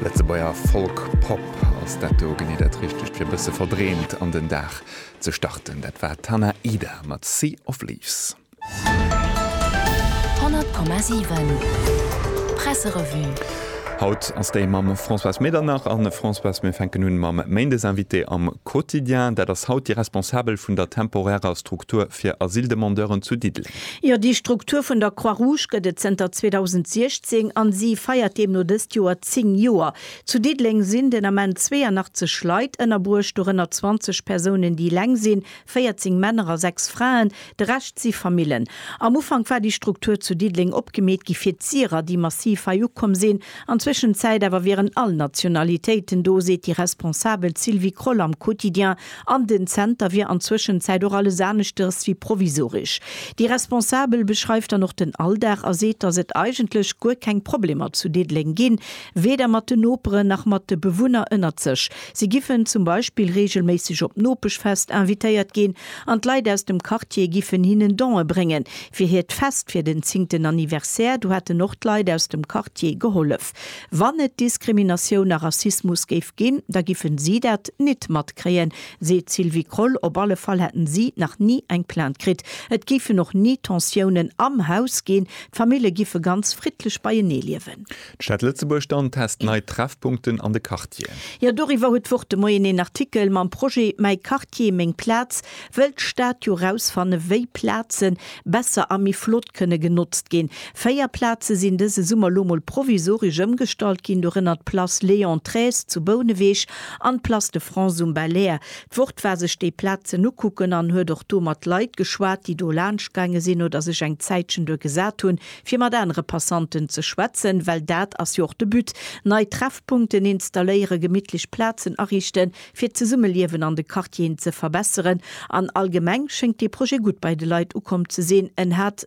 Lëtzebuerger Folk Pop, ass dat do genee dat Richtegt fir e bësse verdreemt an den Dag ze starten? Dat war d'Hannah Ida mat Sea of Leaves. 100,7 Presserevue. Haut ass déi mam Françoise Medernach. A Françoise, mir fänken un mam Méindesinvité am Quotidien. Dat ass haut déi Responsabel vun der temporärer Struktur fir Asyldemandeuren zu Diddeleng. Jo, déi Struktur vun der Croix Rouge gëtt et zënter 2016 an si feiert deemno dëst Joer 10 Joer. Zu Diddeleng sinn den Ament 82 Leit ënnerbruecht, dorënner 20 Persounen, déi eleng sinn, 14 Männer a 6 Fraen, de Rescht si Famillen. Am Ufank war déi Struktur zu Diddeleng opgemeet gi fir d'Syrer, déi massiv hei ukomm sinn. An Zwëschenzäit awer wieren all Nationalitéiten do, seet déi Responsabel Sylvie Kroll am Quotidien. An den Zenter wier an Zwëschenzäit och alles aneschters wéi provisoresch. Déi Responsabel beschreift dann och den Alldag a seet, datt et eigentlech guer keng Problemer zu Diddeleng ginn, weder mat den Noperen nach mat de Bewunner ënnert sech. Si giffen zum Beispill reegelméisseg op d'Nopeschfest invitéiert ginn an d'Leit aus dem Quartier giffen hinnen Don'e bréngen fir hiert Fest fir den zéngten Anniversaire. Do hätten och d'Leit aus dem Quartier gehollef. Wann et Diskriminatioun a Rassismus géif ginn, da giffen si dat nit matkréien, seet d'Sylvie Kroll. Op alle Fall hätten si nach ni eng Plainte kritt. Et géifen och ni Tensiounen am Haus ginn. D'Famille giffe ganz friddlech beienee liewen. D'Stad Lëtzebuerg dann test nei Treffpunkten an de Quartieren. Jo, doriwwer huet d'Wort de Moien een Artikel mam Projet Mäi Quartier, meng Plaz. Wëll d'Stad jo rausfanne wéi Plazen, besser a méi flott kënne genotzt ginn. Véier Plaze sinn dëse Summer lo mol provisoresch ëmgestallt ginn, dorënner d'Place Léon xiii zu Bouneweg an d'Place de France um Belair. D'Wort war sech déi Plazen ukucken an huet och do mat Leit geschwat, déi do laanscht gaange sinn oder sech eng Zäitchen duer gesat hunn, fir mat anere Passanten ze schwätzen, well dat ass jo och de But, nei Treffpunkten installéieren, gemittlech Plazen ariichten. fir d'Zesummeliewen an de Quartieren ze verbesseren an allgemeng schéngt dee Projet gutt bei de Leit ukomm ze sinn. En hat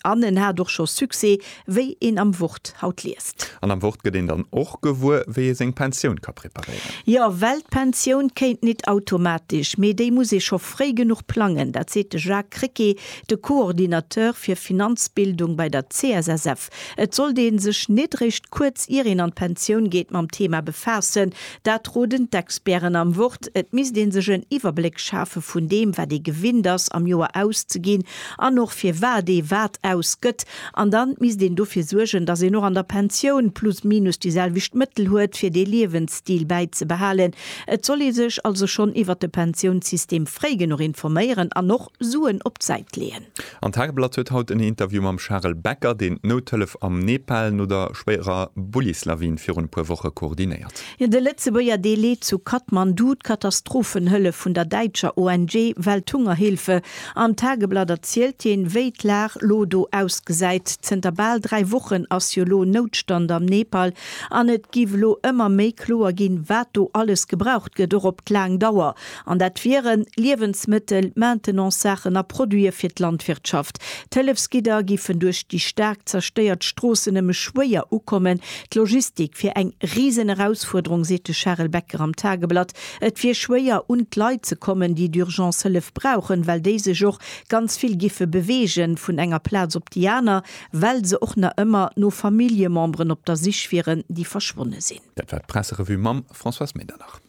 an en hat och scho Succès, wéi een am Wort haut liest. An am Wort gëtt een dann och gewuer, wéi ee seng Pensioun ka preparéieren. Jo, well d'Pensioun kéint nit automatesch, mee déi muss ee scho fréi genuch plangen. Dat seet de Jacques Krecké, de Coordinateur fir Finanzbildung bei der CSSF. Et sollt ee sech net eréischt kuerz ier een an d'Pensioun geet mam Thema befaassen, dat roden d'Experten am Wort. Et misst ee sech en Iwwerbléck schafe vun deem, wat ee gewinnt ass am Joer auszeginn an och firwat ee wat ausgëtt. An dann misst een dofir suergen, datt een och an der Pensioun plus minus déi selwecht Mëttel huet, fir dee Liewensstil bäizebehalen. Et soll ee sech also schonn iwwert de Pensiounssystem fréi genuch informéieren an och Suen op d'Säit leeën. An Tageblatt huet haut en Interview mam Charel Becker, deen d'Nouthëllef am Nepal no der schwéierer Bullislawin virun e puer Woche koordinéiert. De Lëtzebuerger Delai zu Kathmandu, d'Katastrophenhëllef vun der däitscher ONG Welthungerhilfe. Am Tageblatt erzielt hien, wéi d'Lag lo do ausgesäit. Zënter bal dräi Wochen ass jo lo Noutstand am Nepal an et giff lo ëmmer méi kloer ginn, wat do alles gebraucht gëtt, och op d'laang Dauer. An dat wieren, Liewensmëttel, Maintenancesaachen a Produite fir d'Landwirtschaft. D'Hëllefsgidder géifen duerch déi staark zerstéiert Stroossen nëmme schwéier ukommen. D'Logistik wier eng Risenerausfuerderung, seet de Charel Becker am Tageblatt. Et wier schwéier, un d'Leit ze kommen, déi d'Urgence Hëllef brauchen, well déi sech och ganz vill géife beweege vun enger Plaz op déi aner, well se och nach ëmmer no Familljememberen op der Sich wieren, déi verschwonne sinn. Dat war d'Presserevue mam Françoise Medernach.